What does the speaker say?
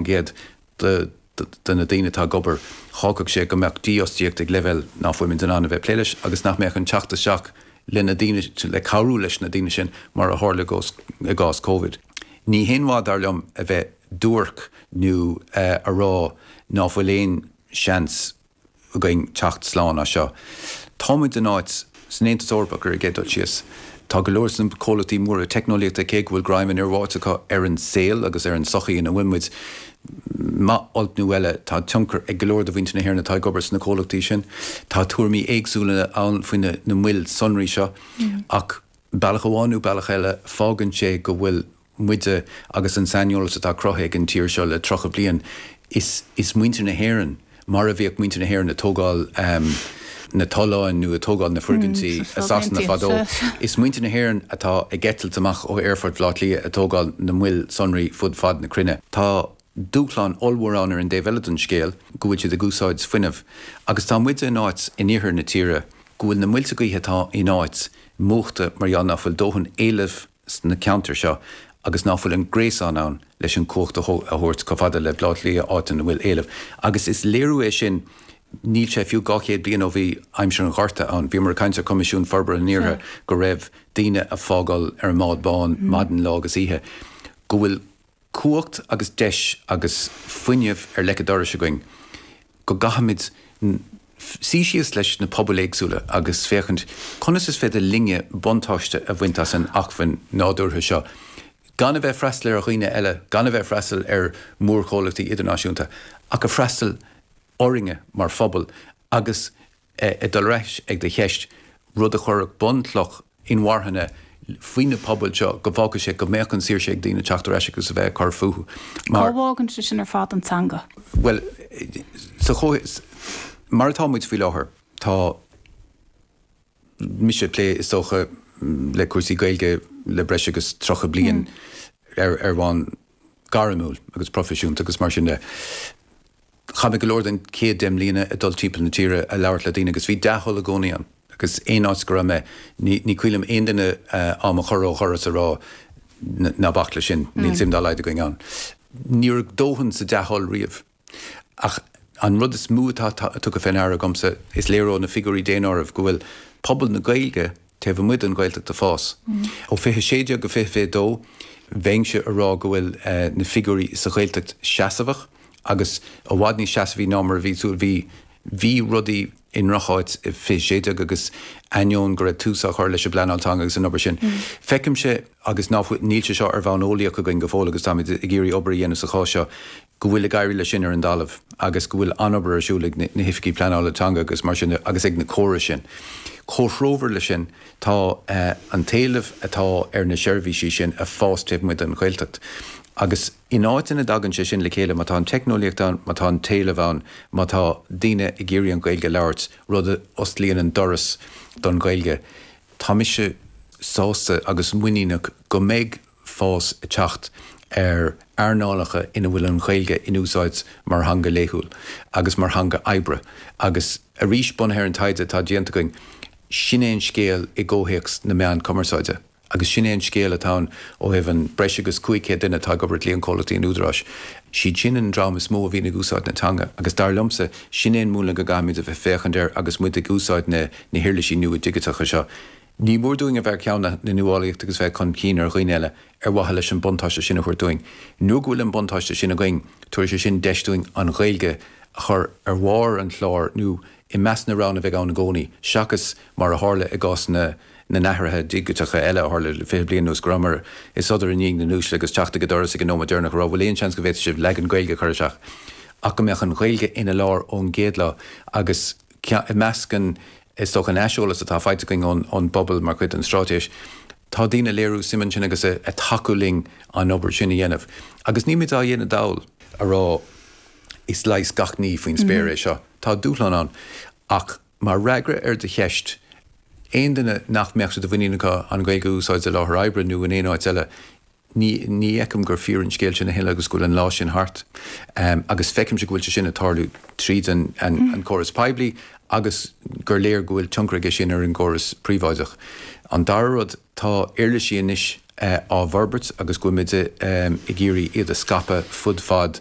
gcéad de na daoine atá ag obair, thógfadh sé go mbeadh dífhostaíocht ag leibhéal ná fuilimid in ann a bheith ag plé leis agus nach mbeadh an teacht isteach leis na daoine, le cabhrú leis na daoine sin mar a tharla i gcás Covid. Ní haon mhaith, dar liom, a bheith duairc nó a rá ná fuil aon seans againn teacht slán as seo. Táimid in áit san Aontas Eorpach ar an gcéad dul síos. Tá go leor sna comhlachtaí móra teicneolaíochta, cé go bhfuil greim an fhir bháite acu ar an saol agus ar an tsochaí ina bhfuil muid, maith olc nó eile, tá tionchar ag go leor de mhuintir na hÉireann atá ag obair sna comhlachtaí sin. Tá tuairimí éagsúla ann faoi na moil sonraí seo, ach bealach amháin nó bealach eile, fágann sé go bhfuil. muide agus an saineolas atá cruthaithe ag an tír seo le tríocha bliain, is muintir na hÉireann, mar a bhíodh muintir na hÉireann ag tógáil na tolláin nó ag tógáil na foirgintí i Sasana fadó, is muintir na hÉireann atá ag eitilt amach ó aerfort Bhaile Átha Cliath ag tógáil na moil sonraí fud fad na cruinne. Tá dúshláin ollmhóra ann ar an dtaobh eile den scéal, go bhfuil siad ag úsáid fuinnimh, agus tá muide in áit in iarthar na tíre go bhfuil na muilte gaoithe atá in áit múchta mar gheall nach bhfuil dóthain éilimh, sna ceantair seo agus nach bhfuil an gréasán ann leis an chumhacht a thabhairt chomh fada le Baile Átha Cliath áit ina bhfuil éileamh. Agus is léiriú é sin, níl sé fiú dhá chéad bliain ó bhí aimsir an Ghorta ann, bhíomar ag caint ar Choimisiún Forbartha an Iarthair go raibh daoine a fágáil ar an mbád bán maidin lá agus oíche, go bhfuil. cumhacht agus deis agus fuinneamh ar leic a' dorais againn go gcaithfimid suí síos leis na pobail éagsúla agus féachaint conas is féidir linne buntáiste a bhaint as an acmhainn nádúrtha seo gan a bheith ag freastal ar dhaoine eile, gan a bheith ag freastal ar mhórchomhlachtaí idirnáisiúnta ach ag freastal orainne mar phobal agus. ag dul ar ais ag do cheist, rud a chuirfeadh bunchloch inmharthana faoi na pobail seo, go bhfágfadh sé go mbeadh an saoirse ag daoine teacht ar ais agus a bheith ag cur fúthu. Cá bhfágann sé sin ar fad an teanga? Bhuel, sa chomhthéacs mar atá muid faoi láthair, tá mise ag plé, is dócha, le cúrsaí Gaeilge le breis agus tríocha bliain ar bhonn gairmiúil agus proifisiúnta agus mar sin de. Chaith mé go leor den chéad deich mbliana ag dul timpeall na tíre ag labhairt le daoine agus bhí dea-thoil i gcónaí ann agus aon áit go raibh mé ní cuimhin liom aon duine do mo chur ó dhoras ag rá 'ná bac leis sin, níl suim dá laghad againn ann'. Ní raibh dóthain sa dea-thoil riamh. Ach an rud is mó atá tugtha fé ndeara agamsa, is léir ó na figiúirí daonáirimh go bhfuil pobal na Gaeilge taobh amuigh den Ghaeltacht a fás. Ó fiche a sé déag go fiche fiche dó, bheinnse a rá go bhfuil na figiúirí sa Ghaeltacht seasmhach agus i bhfad níos seasmhaí ná mar a bhí súil. Bhí bhí rudaí i ndrocháit i fiche a sé déag agus ainneoin go raibh tús á chur leis an bpleanáil teanga agus an obair sin, feicimse agus ná fuil, níl sé seo ar bhonn eolaíoch againn go fóill agus táimid ag iarraidh obair a dhéanamh sa chás seo, go bhfuil ag éirí leis sin ar an dtalamh agus go bhfuil an-obair ar siúl ag na hOifigigh Pleanála Teanga agus mar sin de agus ag na córais sin. Comhthreomhar leis sin, tá an t-éileamh atá ar na seirbhísí sin ag fás taobh amuigh den Ghaeltacht agus in áiteanna a dtagann sé sin le chéile, má tá an teicneolaíocht ann, má tá an t-éileamh ann, má tá daoine ag iarraidh an Ghaeilge a labhairt, rud a osclaíonn an doras don Ghaeilge, tá mise sásta agus muiníneach go mbeidh fás ag teacht ar earnálacha ina bhfuil an Ghaeilge in úsáid mar theanga laethúil agus mar theanga oibre agus arís, bunaithe ar an taighde atá déanta againn, sin é an scéal i gcomhthéacs na meán cumarsáide agus sin é an scéal atá ann ó thaobh an breis agus 500 duine atá ag obair i gcliantchomhlachtaí an Údaráis. Siad sin an dream is mó a bhíonn ag úsáid na teanga agus dar liomsa, sin é an múnla go gcaithfimid a bheith ag féachaint air agus muid ag úsáid na huirlisí nua digiteacha seo. Ní mór dúinn a bheith ar cheann na nuálaíochta agus bheith chun cinn ar dhaoine eile ar mhaithe leis an mbuntáiste sin a thabhairt dúinn. Nuair go bhfuil an buntáiste sin againn, tabharfaidh sé sin deis dúinn an Ghaeilge a chur ar bharr an chláir nó i measc na roghanna a bheidh ann i gcónaí, seachas mar a tharla i gcás na n-athruithe digiteacha eile a tharla le fiche bliain anuas, go rabhamar ag sodar i ndiaidh na n-uaisle agus teacht ag an doras ag an nóiméad deireanach a rá, bhfuil aon seans go bhféadfadh sibh leagan Gaeilge a chur isteach? ach go mbeadh an Ghaeilge ina lár ón gcéad lá agus. I measc an, is dócha, an aiseolais atá faighte againn ón bpobal mar chuid den straitéis, tá daoine a léiriú suim ansin agus a tacú linn an obair sin a dhéanamh. Agus nílmid á dhéanamh dall a rá, is leigheas gach ní faoin spéir é seo. Tá dúshlán ann. Ach mar fhreagra ar do cheist, aon duine nach mbeadh sé de mhuinín acu an Ghaeilge a úsáid i láthair oibre nó in aon áit eile, ní fheicim gur fíor an scéal sin a thuilleadh agus go bhfuil an lá sin thart agus feicimse go bhfuil sé sin ag tarlú tríd an gcóras poiblí agus gur léir go bhfuil tionchar aige sin ar an gcóras príobháideach. An dara rud, tá uirlisí anois á bhforbairt agus go bhfuil muid ag iarraidh iad a scaipeadh fud fad